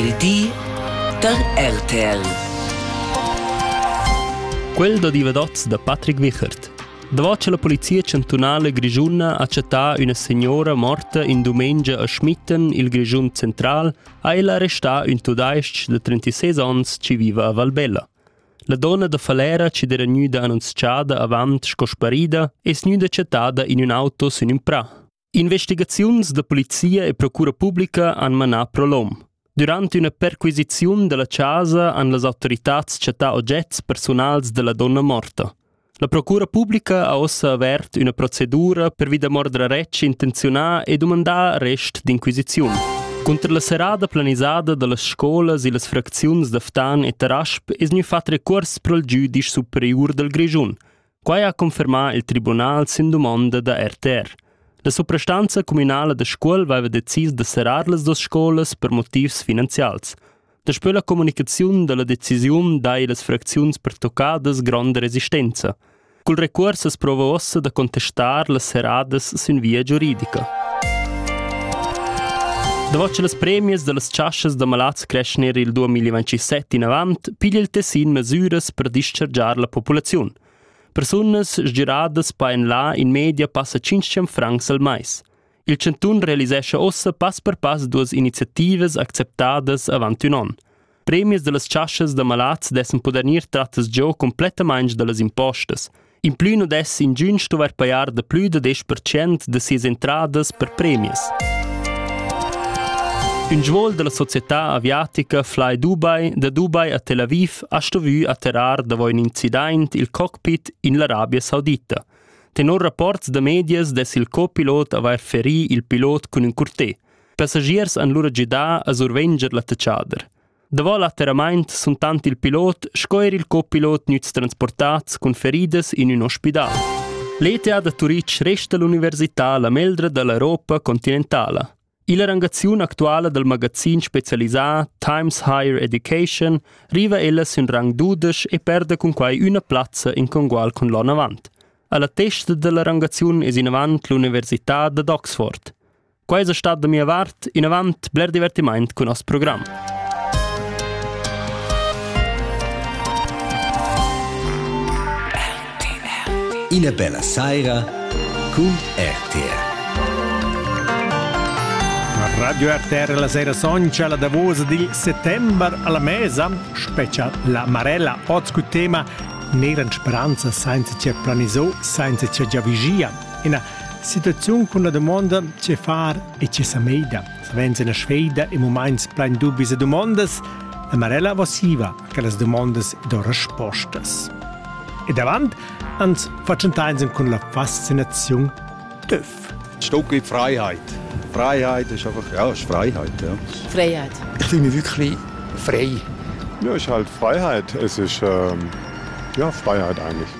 Il di da RTL. Quel da divadats da Patrick Wichert. Davant che la polizia chantunala grischuna ha chattà üna signora morta in dumengia a Schmitten, il Grischun central, ha ella arrestà ün tudais-ch de 36 ans chi viva a Valbella. La donna da Falera chi d'era gnüda annunzchada avant sco sparida es gnüda chattada in ün auto sün ün prà. Investigaziuns da polizia e procura publica han manà prolom. Durant üna perquisiziun dalla casa han las autoritads chattà ogets persunals della donna morta. La procura publica ha ossa avert üna procedura per vi da mordra retsch intenziunà e dumandà arrest d'inquisiziun. Cunter la serada planisada dallas scolas e las fracziuns da Ftan e Tarasp es gnü fat recurs pro il giudisch superiur dal Grischun – Quai ha confermà il tribunal sin dumonda da RTR. La suprastanza communala da Scuol aveva decis da serrar las duas scolas per motivs finanzials. Daspö la comunicaziun da la decisiun dai las fracziuns pertoccadas gronda resistenza. Cul recuors as prova uossa da contestar las serradas sün via giuridica. Davant las premias da las chaschas da malads crescher il 2017 inavant piglia il Tessin mesüras per dischargiar la populaziun. Persunas sgiradas paen là in media passa 500 francs al mais. Il Cantun realisescha ossa pass per pass duas iniziativas acceptadas avant un an. Premies da las chaschas da malats dessen poder gnir trattas giò complettamaing da las impostas – In plü nu dess ingün stuvair pajar da plü da desch percent da sias entradas per premias. Ün svoul da la società aviatica Fly Dubai da Dubai a Tel Aviv ha stuvü atterrar davo ün incident il cockpit in l'Arabia Saudita. Tenor rapports da medias dess il copilot avair ferì il pilot cun ün curtè. Passagiers han lura gidà a survenger l'attacchader. Davò l'atterramaint sun tant il pilot sco eir il copilot gnüts transportats cun feridas in ün ospidal. L'ETA da Turitg resta l'università la meldra da l'Europa continentala. Illa rangaziun actuala dal magazin specialisà Times Higher Education riva ella sün rang dudesch e perda cun quai üna plazza in congual cun l'on avant. Alla testa dalla rangaziun es inavant l'università dad Oxford. Quai es stat da mia vart inavant bler divertimaint cun nos program. Ina bella saira cun RTR. Radio RTR la sera soncia la davosa di settembre alla mesa, specia la Marella, oz cu tema Neran speranza senza che planiso, senza che giavigia. Ina situaziun cun la dumonda tge far e tge sa meida. Savens ina sveida e moments plein dubis e dumondas, la Marella vosiva che las dumondas do respostas. E davant ans facentains cun la fascinaziun d'öf. Stückli Freiheit. Freiheit ist einfach, ja, ist Freiheit, ja. Freiheit. Ich fühle mich wirklich frei. Ja, ist halt Freiheit. Es ist, ähm, ja, Freiheit eigentlich.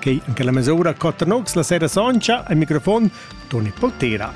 Quei en quella mesura cotta nox la sera soncha al microfon Toni Poltera.